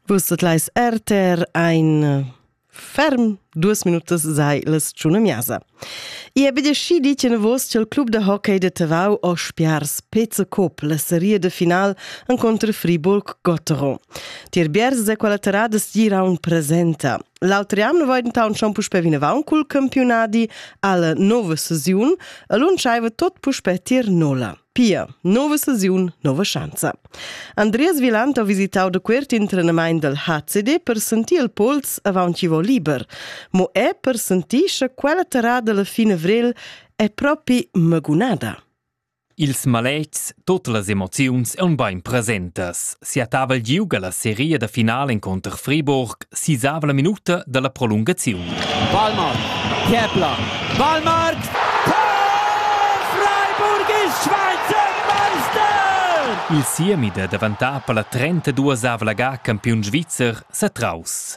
Vus tot leis RTR ein ferm duas minutas sei les tschuna miasa. Ia vede schi dit in vos cel club de hockey de Tavau o spiars Pezze Cup, la serie de final en contro Friburg-Gotteron. Tier biers de qualaterades gira un presenta. L'altre anno va intaun schon puspe vinavant cul campionati alla nova saziun, e l'un schaiva tot puspe tier nola. Pia, nova sesiun, nova schanza. Andreas Vilant ha visitau da quert in trenament del HCD per sentir il pols avant chi vo liber, mo è per sentir sche quella terrada la fin avrel è propi magunada. Ils maletgs, tot las emoziuns on bain presentas. siatavel giu alla seria da finale encunter Friburg sisava la minuta dalla prolungaziun. Ballmark, Kepler, Ballmark, Freiburg il Schweizer Meister! Il siemi da daventà per la 32 ava la ga campiun svizzer sa traus.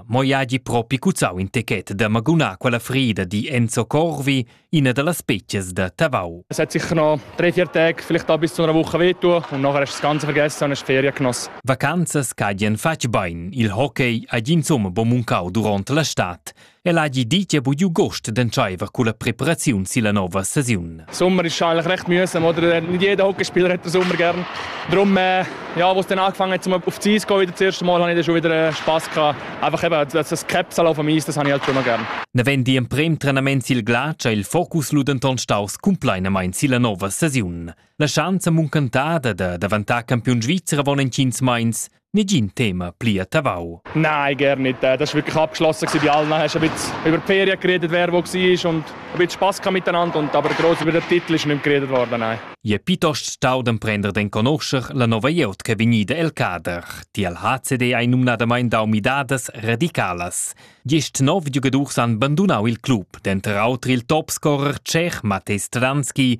Mo hagi propi cuzzau in techet da maguna quella frida di Enzo Corvi, ina dallas specias da Tavau. Es hat sich noch drei, vier Tage, vielleicht auch bis zu einer Woche wehtun und nachher hast du das Ganze vergessen und hast Ferien genossen. Vacanzas cadien fatg bein. Il hockey ha insomma bo muncau duront la stad. El hagi ditg bugiu gost d'entscheiver culla preparaziun silla nova sesiun. Sommer ist eigentlich recht mühsam, oder? Jeder Hockeyspieler hat den Sommer gern. Darum, äh, ja, als es dann angefangen hat, auf die Eis zu gehen, wieder das erste Mal, hatte ich schon wieder äh, Spass gehabt. Einfach eben, das, das Kepsal auf dem Eis, das habe ich halt schon mal gern. Wenn di emprem treinament sil glacia il focus lu denton staus cumplainamain silla nova saziun. La schanza muncantada da davantar campiun svizzer avon en 5 meins negin tema pli a Tavau. Nein, gar nicht. Das war wirklich abgeschlossen. Die allen hast ein bisschen über die Ferien geredet, wer wo war und ein bisschen Spass miteinander. Und, aber gross über den Titel ist nicht geredet worden. Nein. Je piuttosto stau d'emprender d'enconoscer la nova glieud che vegnida el cader. Tiel HCD ei numnadamain dau midadas radicalas. Gest nov giugadurs han bandunau il club, denter auter il topscorer tschech Matej Stranski,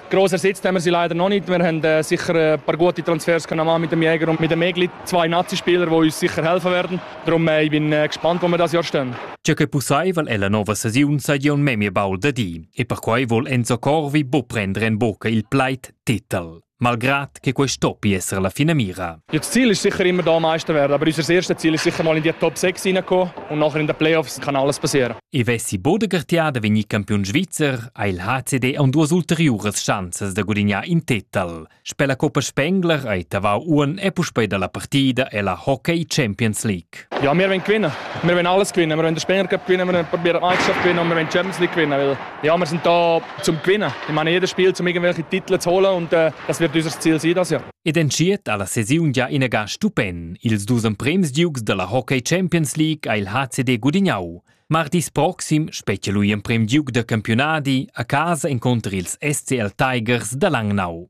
Gross ersetzt haben wir sie leider noch nicht. Wir haben äh, sicher äh, ein paar gute Transfers können machen mit dem Jäger und mit dem Egli. Zwei Nazi-Spieler, die uns sicher helfen werden. Darum äh, ich bin äh, gespannt, wo wir das Jahr stehen. Ciò che possai val ella nova stagiun stagion memia balda di e perquai vol Enzo Corvi bu prendere en buca il pleit titel. Malgrad che quei stoppi esser la finamira. Das Ziel ist sicher immer da Meister werden, aber unser erstes Ziel ist sicher mal in die Top 6 hineinkommen und nachher in den Playoffs kann alles passieren. I vessi Bodegartiade vegnì campiun svizzer ha il HCD an duas ulteriuras schanzas da gudignar in titel. Sper la Coppa Spengler ei Tavau un e puspei dalla partida e la Hockey Champions League. Ja, wir wollen gewinnen. Wir wollen alles gewinnen. Wir wollen den Spender Cup gewinnen, wir wollen probieren, Meisterschaft gewinnen und wir wollen Champions League gewinnen. Weil, ja, wir sind da zum Gewinnen. Ich meine, jedes Spiel, um irgendwelche Titel zu holen und äh, das wird unser Ziel sein das Jahr. Ed entschiet alla sesiun già inaga stupen. Ils dus emprems giugs della Hockey Champions League ha il HCD gudignau. Mardis proxim specchia lui emprem giug da campionadi a casa incontro ils SCL Tigers da Langnau.